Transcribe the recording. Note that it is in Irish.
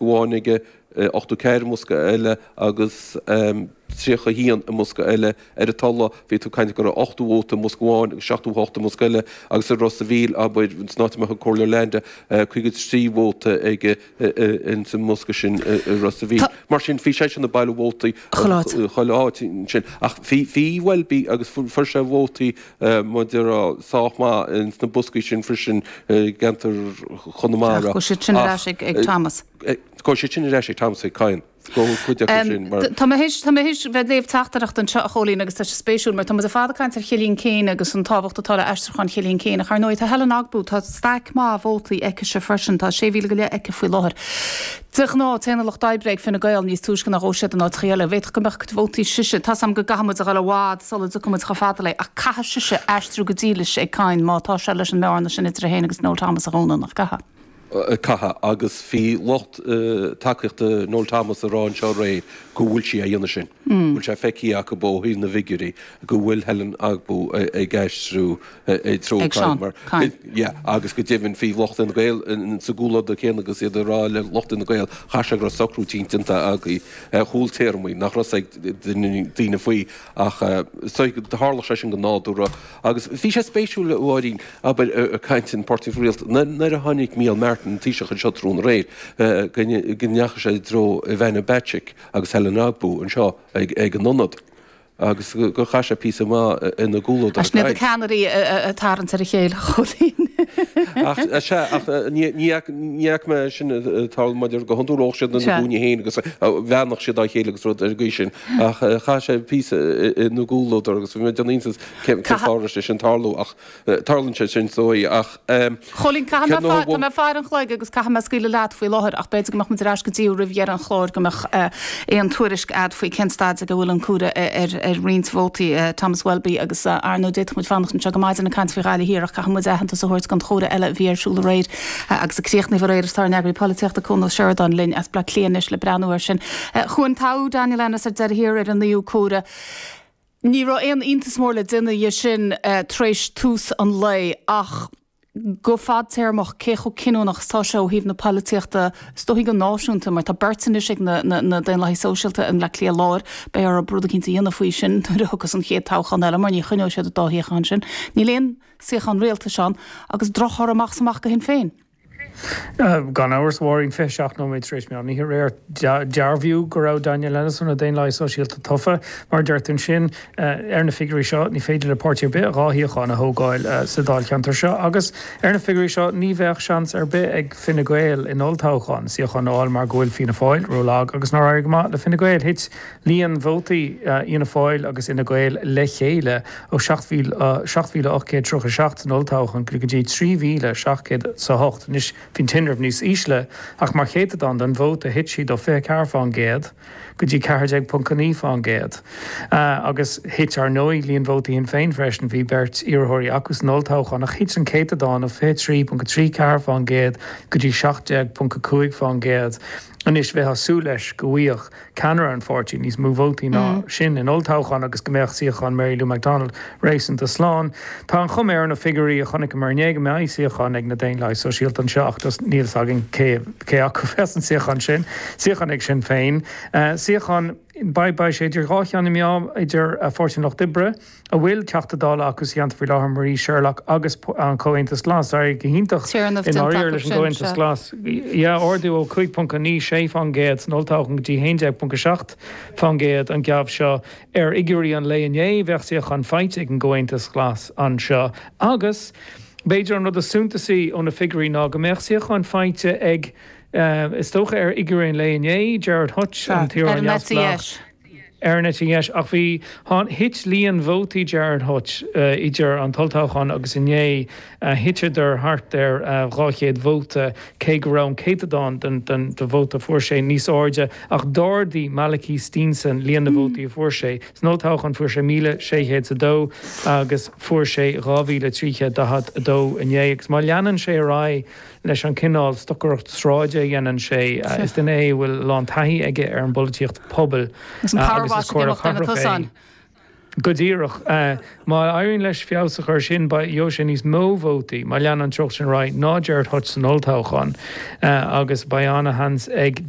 amháin aige, 84 i mbosca eile agus 31 i mbosca eile. Ar an Tulaigh, bhí tú ag caint go raibh 80 vóta i mbosca amháin agus 78 i mbosca eile agus i Ros a' Mhíl, abair, san áit a mbeadh an Comhairleoir Leainde, 53 vóta aige ins an mbosca sin i Ros a' Mhíl. Mar sin, bhí seisean ag bailiú vótaí chuile áit ansin ach bhí Welby agus fuair sé vótaí mar a déarfá sách maith sna boscaí sin freisin i gceantar Chonamara. Ach gabhfaidh siad sin ar ais ag Thomas. Gabhfaidh siad sin ar ais ag Thomas ag Kyne. Gabhfaidh cuid acu sin mar. Tá mé th'éis tá mé th'éis bheith ag léamh teachtaireacht anseo a Chóilín agus tá sé spéisiúil mar tá muid le fada ag caint ar Chillian Keane agus an tábhacht atá le aistriúchán Chillian Keane ach ar ndóigh tá Helen Ogbu tá staic maith vótaí aicise freisin tá 6000 go leith aici faoi láthair. De ghnáth, téann an Lucht Oibre ag Fine Gael níos túisce ná a ghabhas siad in áiteachaí eile. D'fhéadfadh go mbeadh a cuid vótaí sise, tá's agam go gcaithfidh muid a dhul i bhfad sula dtiocfaidh muid chomh fada léi, ach caithfidh sise aistriú go dílis ag Kyne má tá sé leis an mbearna sin idir é fhéin agus Noel Thomas a dhúnadh, nach gcaithfidh? Caithfidh, agus bhí lucht tacaíochta Noel Thomas ag rá anseo aréir go bhfuil sí á dhéanamh sin. Bhfuil sé feicthe acu ó thaobh na bhfigiúirí go bhfuil Helen Ogbu ag aistriú i dtreo ag Seán Kyne, Kyne. yeah, agus go deimhin bhí lucht Fhine Gael sa gcomhluadar céanna agus iad ag rá le lucht Fhine Gael caithfidh sé go raibh socrú eicínt déanta agaibh ar chúla téarmaí nach raibh a fhios ag daoine faoi ach so tharla sé sin go nádúrtha agus bhí sé spéisiúil a Mháirín abair ag caint ar Pháirtí an Rialtais nuair nuair a tháinig Micheál Martin an Taoiseach anseo tráthnóna aréir go ndeachaigh sé i dtreo Ivana Bacik agus Helen Ogbu anseo ag ag an ionad agus gur chaith sé píosa maith ina gcomhluadar Sin iad na ceannairí ag tarraingt ar a chéile, a Chóilín. Ach sea, ach ní fhaca mé é sin ag tarlú mar a déarfá go hiondúil bheadh siad ina gcúinne féin agus bheannódh siad dá chéile agus rud ar an gcaoi sin, ach chaith sé píosa ina gcomhluadar agus bhí mé ag déanamh iontas cén fáth a raibh sé sin ag tarlú ach. Tarlaíonn sé sin is dóigh, ach. Chóilín, Caithfidh mé fáil, tá mé ag faire an chloig agus caithfidh mé scaoileadh leat faoi láthair ach b'fhéidir go mbeadh muid ar ais go dtí thú roimh dheireadh an chláir go mbeadh aon tuairisc agat faoi cén staid ag a bhfuil an comhaireamh ar roinnt vótaí Thomas Welby agus ar ndóigh, d'fhéadfadh muid fanacht anseo go maidin ag caint faoi Ghaillimh Thiar ach caithfidh muid aitheantas a thabhairt don chomhaireamh eile a bhí ar siúl aréir agus a críochnaíodh aréir is tá ár nEagraí Polaitíochta Cuan Ó Seireadáin linn as Bleá Cliath anois le breathnú air sin. A Chuain, toghadh Daniel Ennis ar deireadh thiar ar an naoú comhaireamh. Ní raibh aon iontas mór le déanamh dhe sin tar éis tús an lae ach go fadtéarmach cé chomh cinniúnach is tá sé ó thaobh na polaitíochta is dóigh go náisiúnta mar tá beirt anois ag na Daonlathaigh Sóisialta i mBleá Cliath Láir. Beidh orthu rud eicínt a dhéanamh faoi sin nuair a thiocfas an chéad toghchán eile mar ní choinneoidh siad an dá shuíochán sin. Níl aon suíochán rialtais ann agus drochthoradh amach is amach go Shinn Féin. Gan amhras, a Mháirín, 27 nóiméad tar éis meán oíche aréir, dearbhaíodh go raibh Daniel Ennis ó na Daonlathaigh Sóisialta tofa. Mar a deir tú ansin, ar na figiúirí seo, ní féidir le páirtí ar bith dhá shuíochán a thógáil sa dáilcheantar seo agus, ar na figiúirí seo, ní bheadh seans ar bith ag Fine Gael in olltoghchán suíochán a fháil mar go bhfuil Fianna Fáil rólag agus nár éirigh go maith le Fine Gael. Thit líon vótaí Fhianna Fáil agus Fhine Gael le chéile ó 7,837 san olltoghchán go dtí 3,700 is a hocht, anois bhí an tinreamh níos ísle, ach mar chéatadán den vóta thit siad ó 24 fán gcéad go dtí 14.9 fán gcéad. Agus thit, ar ndóigh, líon vótaí Shinn Féin freisin, bhí beirt iarrthóirí acu san olltoghchán ach thit an céatadán ó 23.34 fán gcéad go dtí 17.5 fán gcéad anois. Bheifeá ag súil leis go bhfaigheadh ceannaire an pháirtí níos mó vótaí ná sin in olltoghchán agus go mbeadh suíochán Mary Lou McDonald réasúnta slán. Tá an chuma ar na figiúirí a chonaiceamar inné go mbeidh suíochán ag na Daonlathaigh Sóisialta anseo ach níl fhios againn cé acu a bheas an suíochán sin. Suíochán ag Sinn Féin. Suíochán, beidh, beidh sé idir dhá cheann na meá, idir Pháirtí an Lucht Oibre, a bhfuil Teachta Dála acu sa cheantar faoi láthair, Marie Sherlock, agus an Comhaontas Glas. D'éirigh go hiontach i ndáiríre leis an gComhaontas Glas, ardú ó 5.96% san olltoghchán go dtí 11.7% an geábh seo. Ar fhigiúirí an lae inné, bheadh suíochán faighte ag an gComhaontas Glas anseo agus, b'fhéidir, an rud is suntasaí ó na figiúirí ná go mbeadh suíochán faighte ag, is dócha ar fhigiúirí an lae inné, Gerard Hutch, an t-iarrthóir neamhspleách. ar an eite dheis ach bhí thit líon vótaí Gerard Hutch idir an t-olltoghchán agus inné thiteadar thart ar 200 vóta cé go raibh an céatadán den vóta a fuair sé níos airde ach d'ardaigh Malachy Steenson líon na vótaí a fuair sé. San olltoghchán fuair sé 1,600 is a dó agus fuair sé 2,342 inné agus má leanann sé ar aghaidh leis an cineál stocaireacht sráide a dhéanann sé. Is duine é a bhfuil a lán taithí aige ar an bpolaitíocht pobail agus is comhairleoir cathrach é. Go díreach. Má éiríonn leis feabhas a chur air sin, beidh, gheobhaidh sé níos mó vótaí, má leanann an treocht sin ar aghaidh, ná Gerry Hutch san olltoghchán agus beidh an-sheans ag duine,